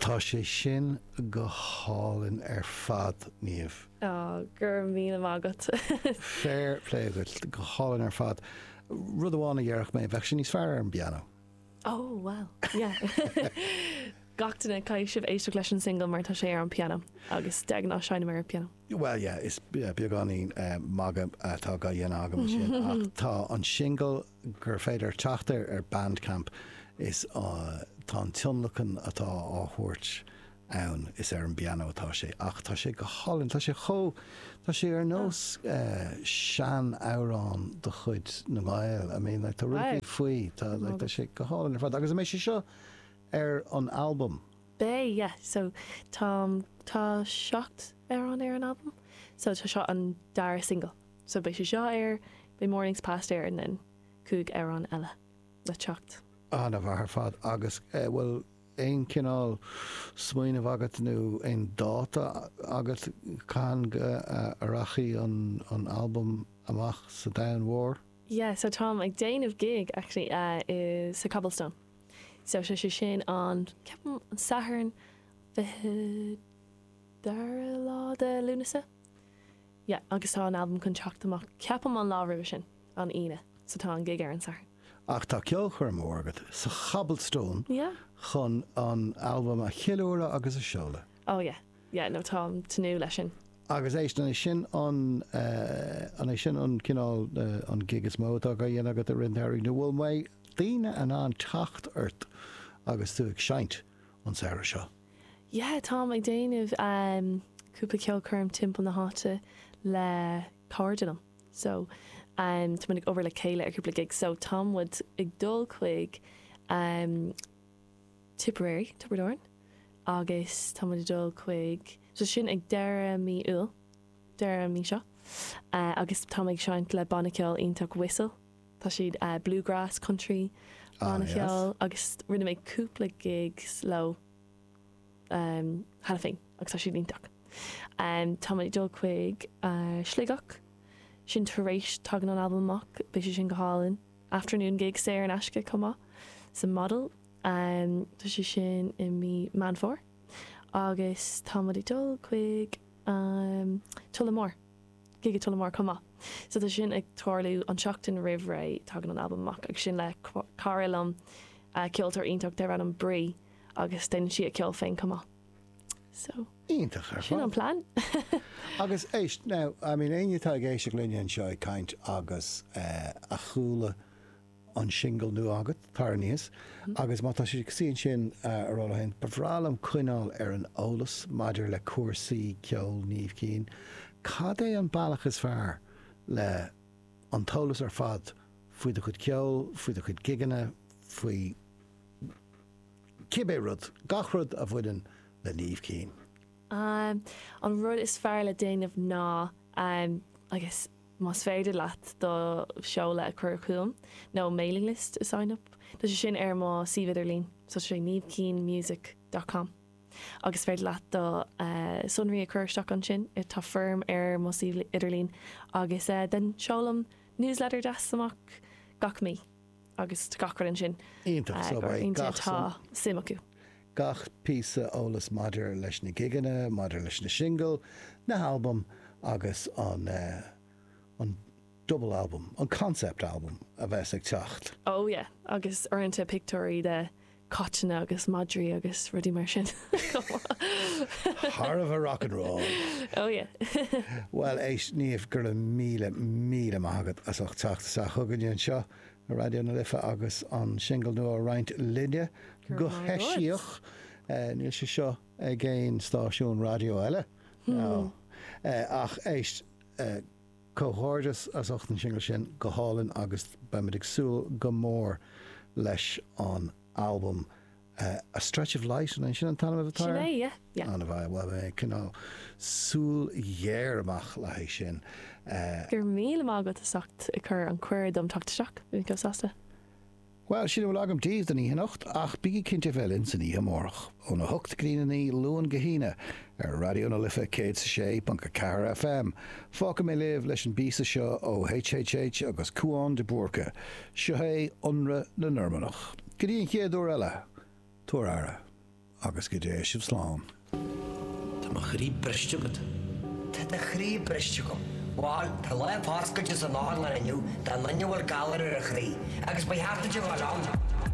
Tá sé sin go hálainn ar fad, Niamh. Ó, go raibh míle maith agat. Fair play agat, go hálainn ar fad. Rud amháin a déarfadh mé, bheadh sé níos fearr ar an bpianó. Ó, bhuel, yeah. Gach duine, caithfidh sibh éisteacht leis an singil mar tá sé ar an bpianó agus de ghnáth seinnim ar an bpianó. Bhuel, yeah, is beagáinín magadh atá á dhéanamh agam ansin ach tá an singil gur féidir teacht air ar Bandcamp is tá an tionlacan atá á thabhairt ann, is ar an bpianó atá sé ach tá sé go hálainn, tá sé chomh, tá sé ar nós sean-amhrán de chuid na nGael, I mean like tá rud faoi, tá like tá sé go hálainn ar fad agus an mbeidh sé seo ar an albam? Beidh yeah, so tá, tá seacht amhrán ar an albam so tá seo an dara single. So beidh sé seo ar, beidh Mornings Past ar and then cúig amhrán eile le teacht. An-mhaith ar fad agus bhfuil aon cineál smaoineamh agat nó aon dáta agat cathain a rachaidh an albam amach sa domhan mhór? Yeah so táim ag déanamh gig actually i, sa Cobblestone so sé sé sin an, ceapaim an Satharn fiche dara lá de Lúnasa. Yeah, agus tá an albam chun teacht amach ceapaim an lá roimhe sin, an Aoine, so tá an gig ar an Satharn. Ach tá ceolchoirm mhór agat sa Cobblestone Yeah. chun an albam a cheiliúradh agus a sheoladh. Oh yeah, yeah, no táim tnúth leis sin. Agus éist, an é sin an, an é sin an cineál, an gig is mó atá á dhéanamh agat i rith an tsamhraidh nó an mbeidh daoine in ann teacht ort agus tú ag seinnt an samhradh seo? yeah táim ag déanamh cúpla ceolchoirm timpeall na háite le cairde liom so tá muid ag obair le chéile ar cúpla gig so tá muid ag dul chuig Tipperary, Tiobraid Árann agus tá muid ag dul chuig, so sin ag deireadh mí Iúil, deireadh an mhí seo agus táim ag seinnt le banna ceoil iontach Whistle. Tá siad bluegrass, country ana-cheol agus rinne mé cúpla gigs leo cheana féin agus tá siad iontach. Tá muid ag dul chuig Sligeach, sin tar éis, tagann an albam amach, beidh sé sin go hálainn. Afternoon gig saor in aisce chomh maith sa Model, tá sé sin i mí Meán Fómhair. Agus táimid ag dul chuig Tullamore. Gig i Tullamore chomh maith. So tá sin ag tarlú. An tseachtain roimh ré tagann an albam amach agus sin le cara liom, ceoltóir iontach dar ainm Bri agus déanann sí a ceol féin chomh maith. So. Iontach ar fad. Sin an plean. Agus éist now, I mean éinne atá ag éisteacht linne anseo ag caint agus a chuala an singil nua agat, tar aníos agus má tá, sé cosúil ansin a rá leo féin, ba bhreá liom coinneáil ar an eolas maidir le cúrsaí ceoil Niamh Keane, cad é an bealach is fearr le an t-eolas ar fad faoi do chuid ceoil, faoi do chuid gigeanna, faoi cibé rud, gach rud a bhaineann le Niamh Keane? An rud is fearr le déanamh ná agus. más féidir leat do sheoladh a chur chugam nó mailing list a sign up tá sé sin ar mo suíomh idirlín so sé niamhkeanemusic dot com agus is féidir leat do sonraí a chur isteach ansin tá foirm ar mo suíomh idirlín agus den seolaim newsletter deas amach gach mí. agus gach rud ansin iontach suimiúil. Gach píosa eolais maidir leis na gigeanna, maidir leis na singil, na halbaim agus an double album, an concept album a bheas ag teacht. Oh yeah, agus uaireanta pictiúirí de caiteanna agus madraí agus rudaí mar sin chomh maith. Thar a bheith rock and roll! Oh yeah! Bhuel, éist, Niamh, go raibh míle, míle maith agat as ucht teacht isteach chugainne anseo ar Raidió na Life agus an singil nua a roinnt linne, go heisiach. Níl sé seo ag aon stáisiún raidió eile, ach éist, Comhghairdeas as ucht an singil sin, go hálainn agus beimid ag súil go mór leis an albam A Stretch of Light, an é sin an t-ainm atá air? Sin é, yeah, yeah. An bhfaighidh, bhuel beidh mé ag coinneáil súil ghéar amach le haghaidh sin. Go raibh míle maith agat as ucht an cuireadh dom teacht isteach, bhí mé chomh sásta. Bhuel, sin a bhfuil agam daoibh don oíche anocht, ach bígí cinnte a bheith linn san oíche amárach, óna hocht go dtína naoi, Luan go hAoine, ar Raidió na Life 106.4 FM. Fágfaidh mé libh leis an bpíosa seo ó HHH agus Cúán de Búrca. Seo é, Ionradh na Normannach. Go dtí an chéad uair eile, tugaigí aire. Agus go dté sibh slán. Tá mo chroí briste agat. Tá do chroí briste agam. Bhal, tá lá an Bhascaide san áireamh inniu do dhuine a bhfuil galar ar a chroí, agus ba cheart duit a dhul ann.